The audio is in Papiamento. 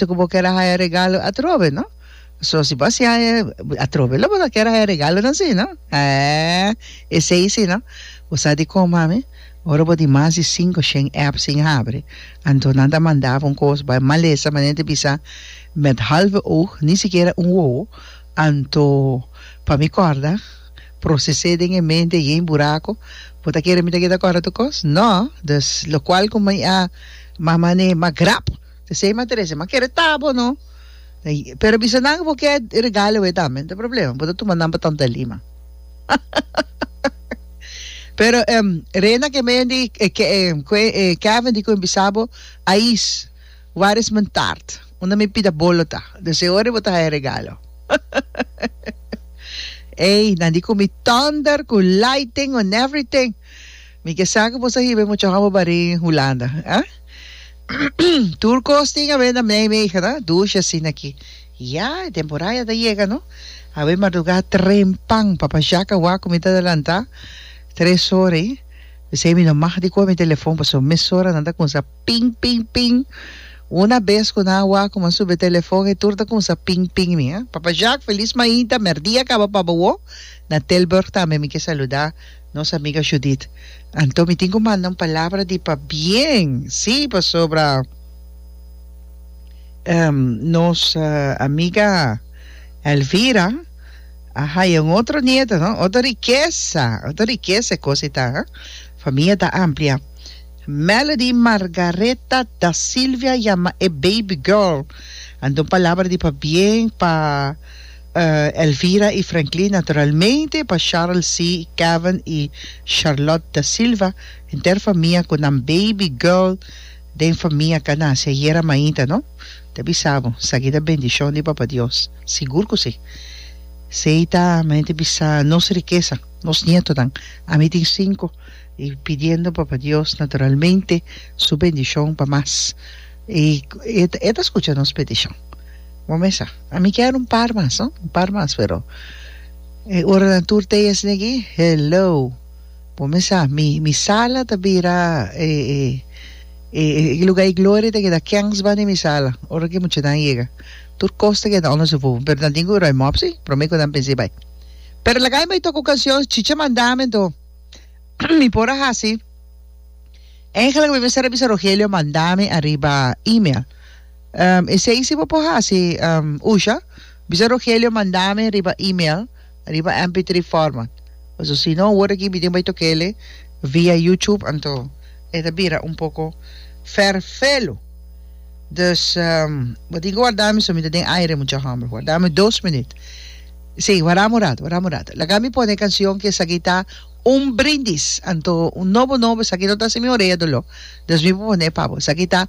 ta cu bo kier a haya regalo atrobe, no? So si bo a siña e atrobe lo bo ta kier a haya regalonan si, no? Haa, esey si, no? Bo sa di con, mami? Ora bo di mas di cinco shen app sin habri, anto nan ta manda bo un cos bay malesa manera di bisa met halve oog, ni sikiera un wowo, anto pa mi corda, procese den e mente yen buraco, bo ta kere mi ta keda corda tu cos? No! Dus locual cu mi a, mama nee, ma grap! P'esei m'a trece, m'a kere ta bo no. Pero bisa nan bo ke e regalo e tambe, no ta problema, bo ta tuma nan pa Tanta Lima. Pero em Rena ke meyon di Kevin di koen bisa bo, Ais, waar is men taart? Unda mi pida bolo ta? Desde ora bo ta haya regalo. Ey, nan di komi tonder ku lighting en everything. Mi ke sa ku boso a hiba e muchacho bo barí Hulanda, ha? Tur kos tin awe na Nijmegen, dushi asina aki. Ya, e temporá ya ta yega, no? Awe mardugá trempan, papa Jàk a wak ku mi ta adelantá tres ora ei. P'esei mi no mag di kohe mi telefòn, pasobra mesora nan ta kuminsá ping, ping, ping. Una bes ku nan a wak ku mi a subi e telefòn ei, tur ta kuminsá ping, ping mi, ha? Papa Jàk, felis mainta, merdí a kaba pa bo. Na Tilburg tambe mi ke saludá. Nos amiga Judith, Anto mi tin cu manda un palabra di pabien, si, pasobra nos amiga Elvira a haya un otro nieto, no, otro rikesa, otro rikesa e cosa y ta, ha, famia ta amplia. Melody Margareta Da Silvia yama e baby girl, anto un palabra di pabien pa. Elvira i Franklin naturalmente pa Charles C. Kevin i Charlotte Da Silva henter famia ku nan baby girl den famia ka nasi ayera mainta no ta bisa bo sa kita bendishon di Papa Dios sigur ku si sei ta mente bisa nos rikesa nos nietonan ami tin sinku i pidiendo Papa Dios naturalmente su bendishon pa mas i e ta skucha nos petishon. Bo mesa, a mi kier un par mas, no? Un par mas, pero e oranan tur tei asina aki, hello. Bo mesa, mi, mi sala ta bira e, e, e, e luga di gloria ta keda kèns banda di mi sala, ora ku e muchanan yega. Tur kos ta keda unda su fufu, pero nan tin ku bira e mòpsi, promé ku nan pensa i bai. Pero laga mi bai toka un kanshon, chicha manda mi anto mi por a hasi, èngela ku mi mester a bisa, Rogelio manda mi ariba email. Esei si bo por hasi usha, bisa Rogelio manda mi riba email, riba MP3 format. Paso si no word aki mi tin bay toca ele via YouTube anto e ta bira un poco ferfelu. Dus bo tin cu warda mi so mi ta den aire mucha homber. Warda mi dos minuut. Si, wara mi un rato, wara mi un rato. Laga mi pone e cancion cu esaki ta Un brindis anto un nobo nobo esaki no ta hasi mi orea dolor. Dus mi por pone pa bo. Esaki ta.